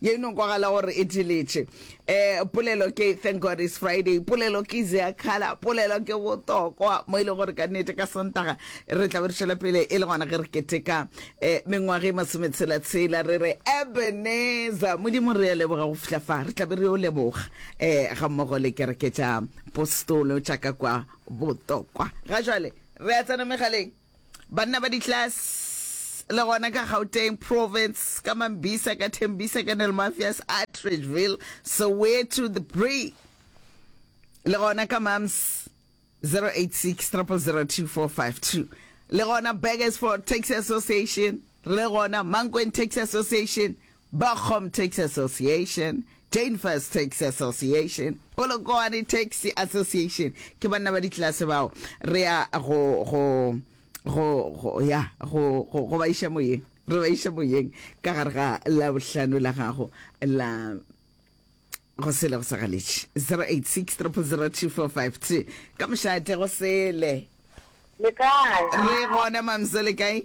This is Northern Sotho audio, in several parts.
ye no kwagala gore e diletše um polelo ke thank god is friday polelo ke zeakhala polelo ke botokwa mo e leng gore ka nnete ka santaga re tla be re tšwela pele e le gona ge re keteka um mengwaga e masometshela-tshela re re ebeneza modimo re ya leboga go fitlha fa re tla be re yo leboga um ga mmogo le kereke tša postolo tša ka kwa botokwa ga jale re a tsena megaleng Banna ba di-class le gona ka Gauteng province, ka Mambisa, ka Tembisa, ka Nelmafias, Atteridgeville, Soweto, the Bree, le gona ka Mams 086 002452, le gona Burgersfort Taxi Association, le gona Mankweng Taxi Association, Bochum Taxi Association, Danvers Taxi Association, Polokwane Taxi Association, ke banna ba ditlelase bao re ya go go go go ya go go go ba iša moyeng re ba iša moyeng ka gare ga la bohlano la gago la go sele go sa galetše 086 002452 ka mošate go sele le kae re gona mamso le kae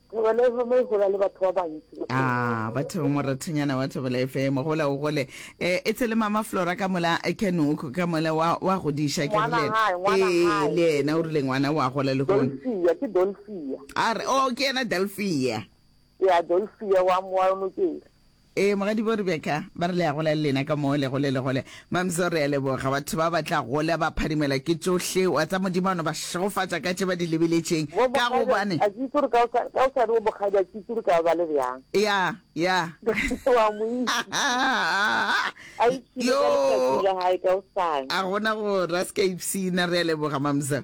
Thaba la FM e gola le batho ba bantsi. Ah, ba thaba morathanyana wa Thaba la FM, gola o gole. Eh, e tshele mama Flora ka mola eh, Kenoko ka mola wa wa godiša ke Ngwana rile. hae, ngwana Eh, hae. le yena o rile ngwana wa gola le gone. Dolfia, ke Dolfia. A re, oh, ke yena Delphia. Ya Dolfia wa mo wa nokeng. Ee, Mogadibo Rebecca, ba re le a gola le lena ka mo le gole le gole. Mam'so, re a leboga. Batho ba ba tla gola ba phadimelwa ke tšohle, wa tsa Modimo a no ba šegofatša ka tše ba di lebeletšeng, Wo ka bogadi a gobane, a ke itse gore ka o sa ka o sa re wo bogadi a ke itse gore ka ba le bjang. ya, ya, Wa mo itse. A ipshine ka letšatši yoo, la hae ka osane. a gona go ra se ka ipshina, re a leboga Mam'so.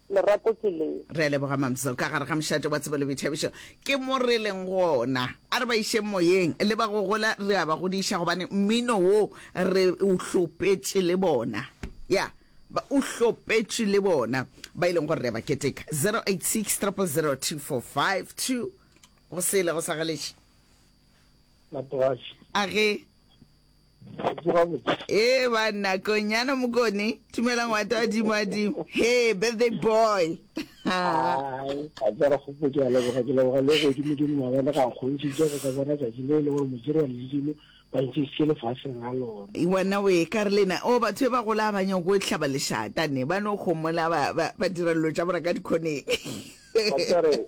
Lerato ke leng. Re a leboga Mam'selle ka gare ga mošate wa tsebo le boithabišo. Ke mo re leng gona. A re ba išeng moyeng le ba go gola re a ba godiša gobane mmino wo re o hlopetše le bona. Ya, ba o hlopetše le bona ba e leng gore re a ba keteka. 086 000245 2 go sele go sa galetše. Matoaši. A ge. Gabotse, gabotse. Ee, banna, konyana mokone. Tumela ngwata wa dimo a dimo. Hey, birthday boy. Hai, a tsara gopo ke a leboga, ke leboga le go dimo dimo wa bona ga nkgontšitše go ka bona tšatši le le gore modiri wa ledimo ba ntšisitše lefaseng la lona. Wena o e ka re lena, o batho e ba gola ba nyako e hlaba lešata ne, ba no gomola ba, ba, ba dira dilo tša bona ka dikhoneng. Ba tsere.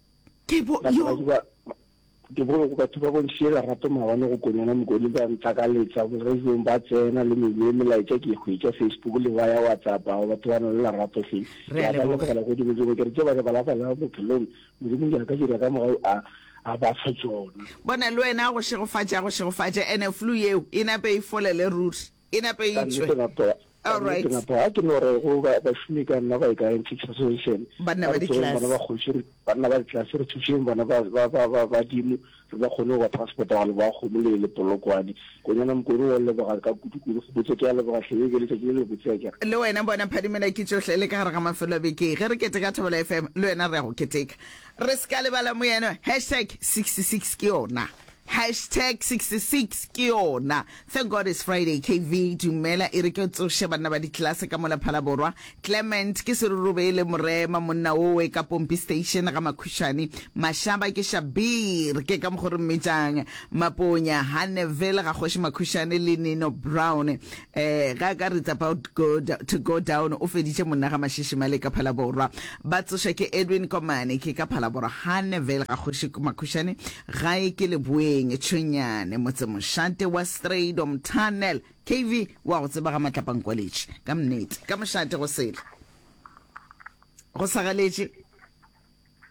Ke bo, Batho ba yo. duba, ke bo go batho ba bontšhile lerato maabane go konyana mokoni ba ntlakaletsa, boradiong ba tsena le mebile melaetša ke e hwetša Facebook le ba ya WhatsApp, ao batho ba na le lerato hle. Re Ke a a ba leboga. lebogela go Modimo, ke re tše ba re ba la bala bophelong, Modimo ke a ka dira ka morao a, a ba fa tšona. Bona le wena a go šegofatše, a go šegofatše, ene flu yeo e nape e folele ruri. E nepe Ka nnete, itšwe. gape, ka All nnete, right. gape, ga ke no re go ba, bašomi ka nna ba e ka Antiques Association. Banna A ba re tšeeng bana ditlase. ba kgoši, re, banna ba ditlase, re thušeng bana ba, ba, ba, ba, badimo, re ba kgone go ba transporta gwa leboga kgomo le, le Polokwane. Konyana Mokone wa leboga ka kudu-kudu. Kgopotše ke a leboga hle, e be letšatši le lebotse ya kere. Le wena bona phadimela ke tšohle le ka gare ga mafelo a beke ge re keteka Thobela FM le wena re ya go keteka re se ka lebala moyeno hashtag 66 ke yona. Hashtag 66 ke yona. Thank God it's Friday KV dumela e re ke tsoše banna ba ditlelase ka mola Phalaborwa. Clement ke Serurubele Morema monna wowe ka Pompi Station ga Makhušane. Mashaba ke Shabir ke ka mokgo re mmitšang Maponya. Hanneville ga Kgoši Makhušane le Nino Brown. Ee, ga ka It's About go to Go Down o feditše monna ga Mashishimale ka Phalaborwa. Ba tsoša ke Edwin Komane ke ka Phalaborwa gane Vale ga Kgoši Makhušane gae ke Leboeng Tšhwenyane motse mošate wa Strydom Tunnel. KV wa go tseba ga Matlapankwaletši ka mnete ka mošate go sele go sa galetše.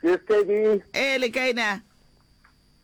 Ke steady. Ee, le kae na?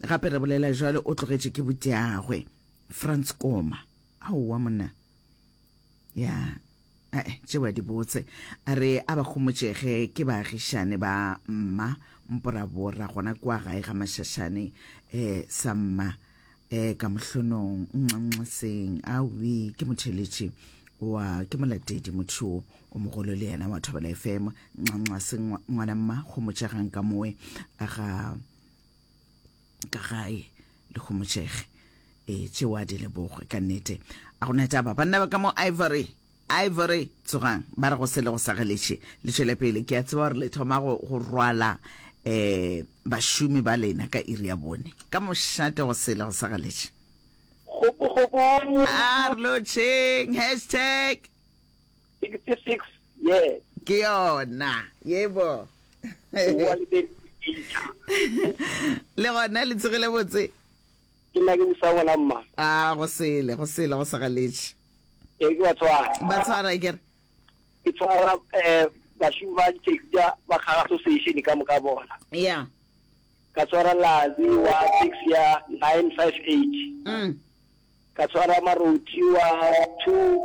Gape re bolela jwalo, o tlogetše ke botagwe. Frans Koma. Aowa, monna. Ya, ae, tšeo a di botse. A re a ba homotšege ke baagišane ba mma, mporabora, gona kua gae ga Mašašane, eh, sa mma, eh, ka mohlonong, nxanxaseng. Awi, ke motheletši. Wa, ke molatedi, motho yo o mogolo le yena wa Thobela FM. Nxanxaseng, ngwana mma, homotšegang ka moe, ga... ka gae le kgomotšege e eh, tšeo a di lebogwe ka nnete a gona taba banna ba ka mo ivory ivory tsogang ba re go se le go sageletše le tšwele pele ke a tseba gore le thoma go rwala um bašomi ba lena ka iri ya bone ka mošate go se le go sageletše a re lotšheng hashtag 66 years ke yona yebo wa le be le gona le tsegile botse ke nna ke busa gona mma a go sele go sele go segaletše e ke ba tshwara ba tshwara e kere ke tshwara um bašomi ba ditaxia ba kgaga association ka moka bona ya ka tshwara lazi wa tax ya 958 mm ka tshwara marothi wa two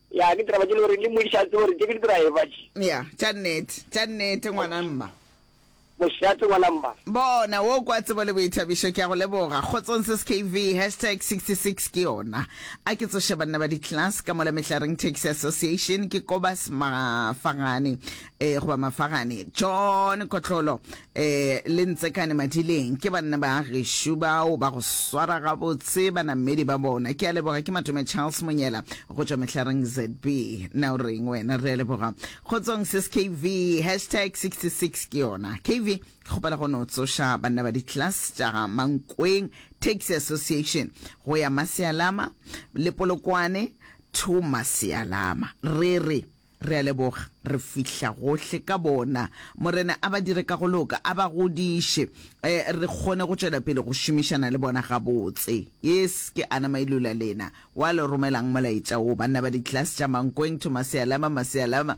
Ya, ke diraba tše le gore le modiša a tsebe gore tše ke didraeba tše. Ya, tša nnete, tša nnete ngwana mma. Mošate ngwana mma. Bona, wo kwa tsebo le boithabišo, ke a go leboga. Kgotsong sis KV, hashtag 66 ke yona. A ke tsoše banna ba di-class ka mola Mehlareng Taxi Association, ke Kobas Mafagane, eh, goba Mafagane, John Kotlolo, E le ntsekane madileng, ke banna ba gešo bao ba go swara gabotse banamedi ba bona. Ke a leboga, ke Matome Charles Monyela go tšwa Mehlareng ZB. Na o reng wena? Re a leboga. Kgotsong sis KV, hashtag 66 ke yona. KV, ke kgopela go no tsoša banna ba di-class tša ga Mankweng Taxi Association go ya Masialama le Polokwane to Masialama. Re re. Re a leboga, re fihla gohle ka bona. Morena a ba dire ka go loka, a ba godiše, e, re kgone go tšwela pele go šomišana le bona gabotse. Yes, ke Ana Mailula lena, wa le romelang molaetša wo, banna ba ditlelase tša Mankweng, Thomasealama, Masealama,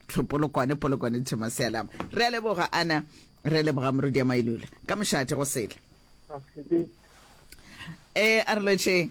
Tlh. Polokwane, Polokwane, Thomasealama. Re a leboga, Ana. Re a leboga, Morudia Mailula. Ka mošate, go sele. Ee, a re lwetšeng.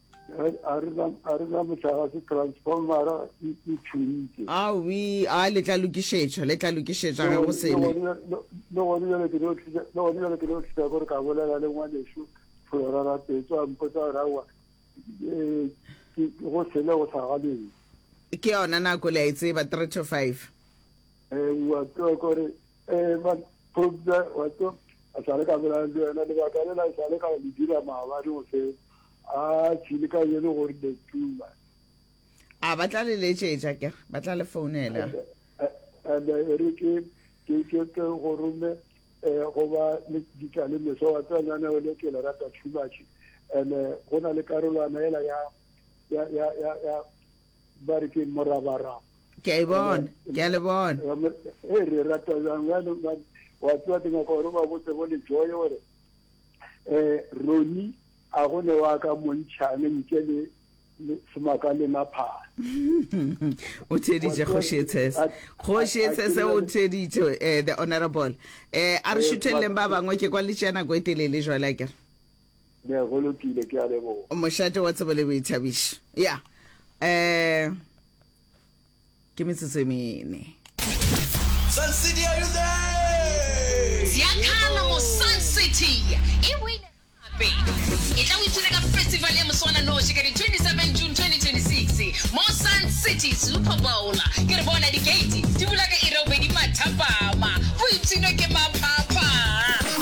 a re na motlagase transformera e tšhoitse awi a le tla lokišetšwa le tla lokišetšwa ge go sele le gone jale ke no tlisa le gone jale ke no tlisa gore ka bolela le ngwaneso flora ra petso a mpotsa gore awa eh, go sele go sa galeng ke yona nako le a e tseba 3 to 5 ewa eh, ke gore Eh, but Phobza, wa tso, a sale ka bolela le wena, lebaka le la sale ka le dira maabane go se, a tshile ka yele gore le tuma. A ba tla le letšetša ke, ba tla le founela. And eh, e re ke, ke, ke, ke go rome, eh, go ba le ditla le meso, wa tsa nyane o le ke le rata too much. And eh, go na le karolwana ela ya, ya, ya, ya, ya, ba re ke morabaraba ke a e bona ke a le bona e re rata jang bjale wa tseba ke nyaka gore ba botse bo lejoe gore um roni a go ne wa ka montšhane nke le semaka le maphara o theeditše kgošetshese kgošetshese o theeditše um eh, the honorable um a re šutheleleng ba bangwe ke kwa letšea nako e telele jwale a kere Mme, go lokile, ke a leboga. Mošate wa tsebo le boithabišo. Ya. Eh, ke metsotso e mene. Sun City, are you there? Ziakhala mo Sun City e wine gape. E tla o ithute ka festival ya moswananoši ka di 27 June 2026 mo Sun City Super Bowl. Ke re bona di-gate di bula ka iri ya bobedi mathapama, go ipshinwe ke maphapha.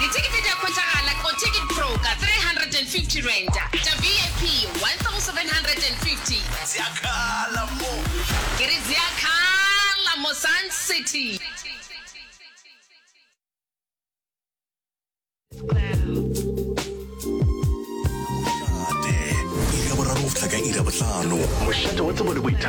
Dithekete di a hwetšagala ko Ticket Pro ka R350, tša VIP R1,750. Zia khala mo. Ke re zia khala mo Sun City.